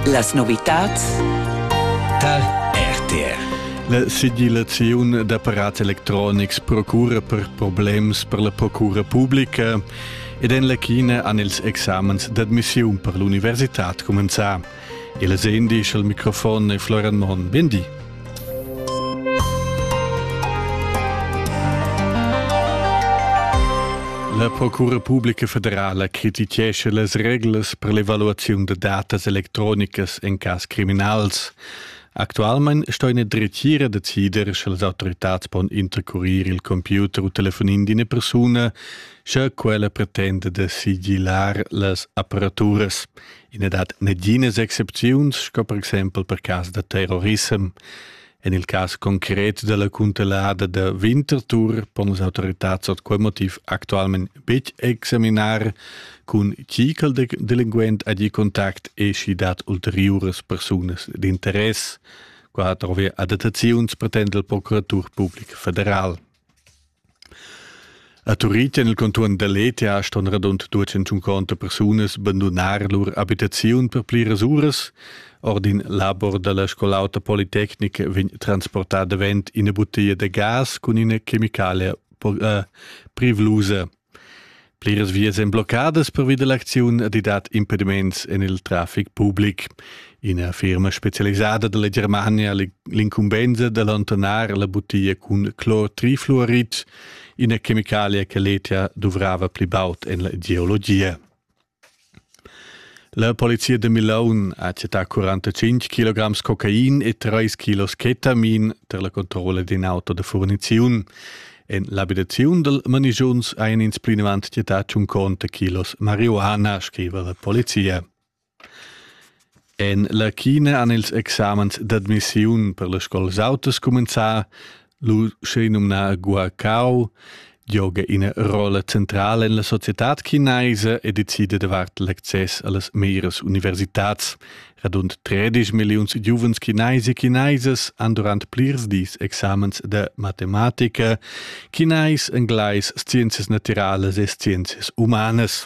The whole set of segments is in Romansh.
Las novitads tar RTR. La sigillaziun d'apparats electronics procura per problems per la procura publica ed en la China han ils examens d'admissiun per l'universitad cumenzà. Il Sendi al microfon e Florian Mohn. Bindi. La Procura publica federala crititgescha las reglas per l'evaluaziun da datas electronicas en cas criminals. Actualmein sto ina dretgira decider, sche las autoritads pon intercurir il computer u telefonin d'ina persuna, sche quella pretenda da sigilar las apparaturas. I n'è dat naginas excepziuns, sco per exempel per cas da terrorissem. En il cas concret della cuntelada da Winterthur pon las autorità sot quel motiv actualment betg examinar cun chi quel delinquent ha di contact e schi dat ulteriuras persunas d'interess. Qua trovi adattaziuns pretend la Procuratur Publica Federal. A Turitg en il contuorn da Lezia ston radund duecentschunconta persunas bandunar lur abitaziun per pliras uras. Ord in labor da la Scol'auta Politecnica vegn transportà davent ina butteglia da gas cun ina chemicalia eh, privlusa. Pliras vias èn bloccadas pervi da l'acziun ed i dat impediments en il traffic public. Ina firma spezialisada da la Germania, l'incumbensa da allontanar la buttiglia cun clortrifluorid, ina chemicalia che l'ETA duvrava pli baud en la geologia. La polizia da Milaun ha chattà 45 kg cocain e 3 kg ketamin tar la controlla d'in auto da furniziun. En l'abitaziun dal manigiuns hajan ins plinavant chattà tschunconta kilos marihuana, scriva la polizia. En la China han ils examens d'admissiun per las scolas autas cumenzà, lu schenumnà Guacao, gioga ina rolla centrala en la societad chinaisa e decida davart l'access a las meras universitads. Radund 13 milliuns giuvens chinais e chinesas han durant plirs dis examens da matematica, chinais, englais, scienzias natiralas e scienzias umanas.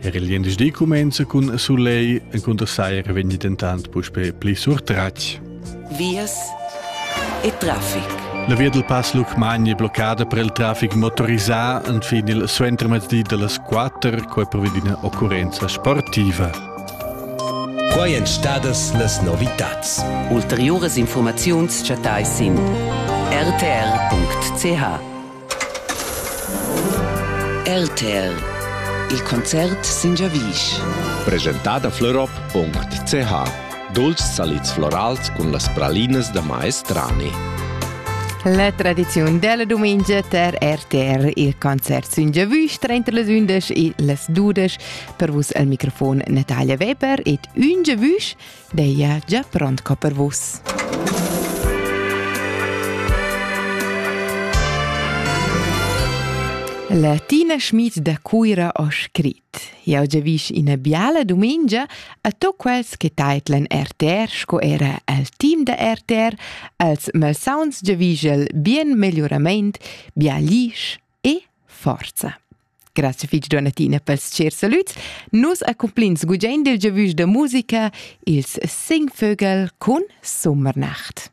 Er il gliendisdi cumenza cun sulegl, encunter saira vegni dentant puspè pli surtratg. Vias e traffic. La via dal Pass Lucmagni è bloccada per il traffic motorisà fin il suentermezzdi da las 4, quai provedi d'ina occurrenza sportiva. Quai èn stadas las novitads. Ulteriuras informaziuns chattai sin rtr.ch. RTL Il concert sin giavisch. Presentada florop.ch Dolci salids florals cun las pralinas da maestrani. La tradiziun della domenica ter RTR il concert sin giavisch trenta las undisch e las dudisch per vus al microfon Natalia Weber ed un giavisch Deia gia pront co per vus. La Tina Schmid da Cuira ho scrit. Jau giavisch ina biala dumengia a to quels che taitlan RTR sco era al team da RTR als malsauns giavischel bien megliurament, bia lisch e forza. Grazie fitg Donatina pels cher salüds. Nus accumplins gugent il giavüsch da musica ils Singvögel cun Sommernacht.